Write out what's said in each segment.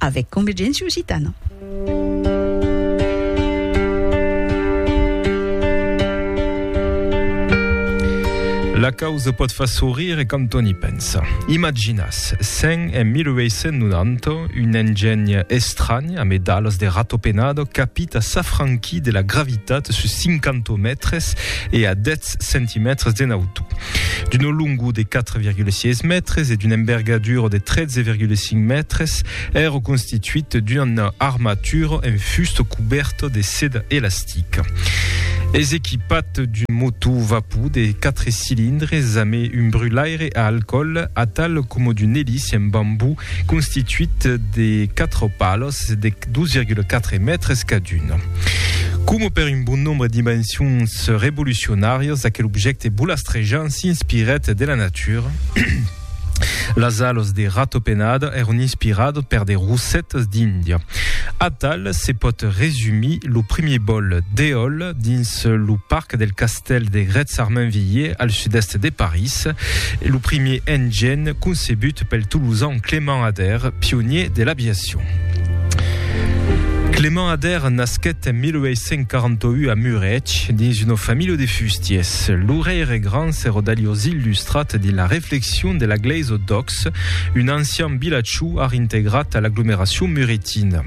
avec Convergència Occitana. La causa pot far sourire e quand on y pensa. Imaginas, sen en 1890, un engeny estrany a medalas de ratopenado capit a s'afranquir de la gravitat sus 50 mètres e a 10 7 centimètres de nauto. D'un longo de 4,6 mètres e d'una envergadura de 13,5 mètres, èra constituit d'una armatura en fusta coberta de seda elastica. Es equipat d'un motor vapor de 4 cilindres amb un brulaire a alcoòl atal coma d'un elice en bambú constituit de 4 palas de 2,4 mètres cadun. Coma per un bon nombre d'invencions revolucionàrias, aquel objècte bolastrejant s'inspirèt de la natura. Las alas de ratopenada èran inspiradas per de rossetas d'Índia. Atal se pòt resumir lo primièr bòl d'eòla dins lo parc del castèl. castèl de Grètz-Armainvilliers, al sud-èst de París, e lo primièr engen concebut pel tolosan Clément Ader, pionier de l'aviacion. Clément Ader nasquèt en 1841 a Murèch dins una familha de fustiers. Lo rei Regrand se rodaliós illustrat dins la reflexion de la glèisa d'Ox, un ancian vilatjau ar integrat a l'aglomeracion muretina.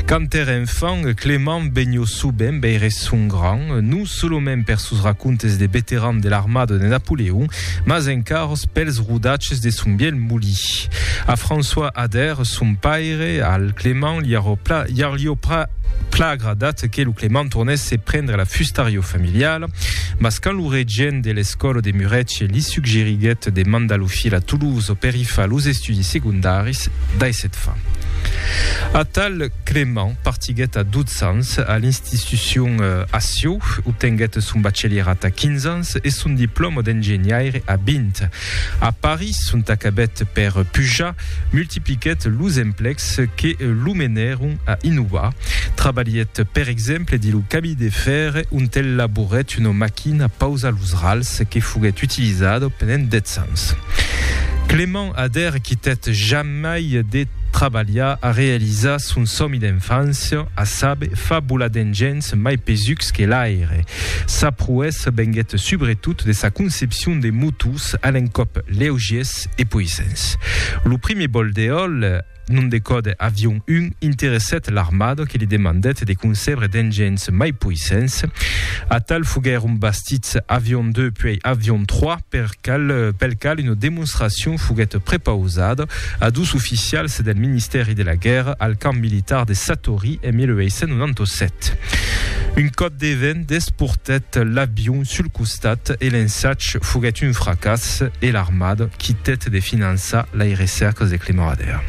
Quand ère enfant, Clément benhó soubent veire son gran, non solomènt per sos racontes de veteran de l'armada de Napoleon, mas encarós pels rodatges de son vièlh molí. A François Ader, son paire, al Clément li arrò pla, iar lió pra, pla agradat que lo Clément tornèsse prendre la fustarió familiala, mas quand lo regent de l'escòla de Muretge li suggeriguèt de mandar lo filh a Toulouse per i far los estudis secondaris, Caucas dai set fa. Atal Clement partiguèt a 12 ans a l'institucion a Sieu, obtenguèt son bachelierat a 15 ans e son diplòma d'engenhaire a 20. A París, ont acabèt per pujar, multipliquèt los emplecs que lo menèron a innovar. Trabalhèt per exemple dins lo cami de fèr ont el laborèt una maquina pausa los rals que foguèt utilizada pendent 10 ans. Clement Ader quitèt jamai de trabalhar a realizar son sòmi d'enfància, a saber, fabular d'engenh mai pesucs que l'aire. Sa proèssa venguèt subretot de sa concepcion de motos a l'encòp leugiers e poissents. Lo primier bòl d'eòl, Non de còde avion un, interessèt l'armada que li demandèt de concebre d'engenhs mai poissents. Atal foguèron bastits Avion 2 puèi Avion 3, per cal, pel cal una demonstracion foguèt prepausada a dus oficials del Ministèri de la Guèrra al camp militar de Satory en 1897. Un còp de vent desportèt l'avion sul costat e l'ensatge foguèt un fracàs e l'armada Quitèt de finançar lei recèrcas de Clemorader.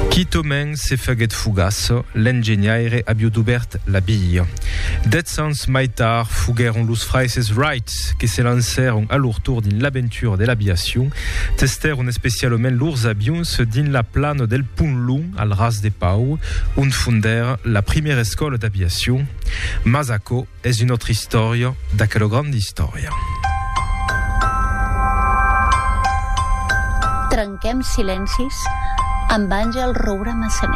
Quitament se faguèt fugaç, l'engenhaire aviu dubèrt la bia. Dètz ans mai tard foguèron los fraises Wright que se lancèron a lor tor dins l'aventura de l'aviacion. Testèron especialament lors avions dins la plana del Pont Long al Ras de Pau, ont fondèra la primièra escòla d'aviacion. Mas aquò. Es una autra istòria d'aquela granda istòria. Trenquem silencis amb Angel Roura Massanet.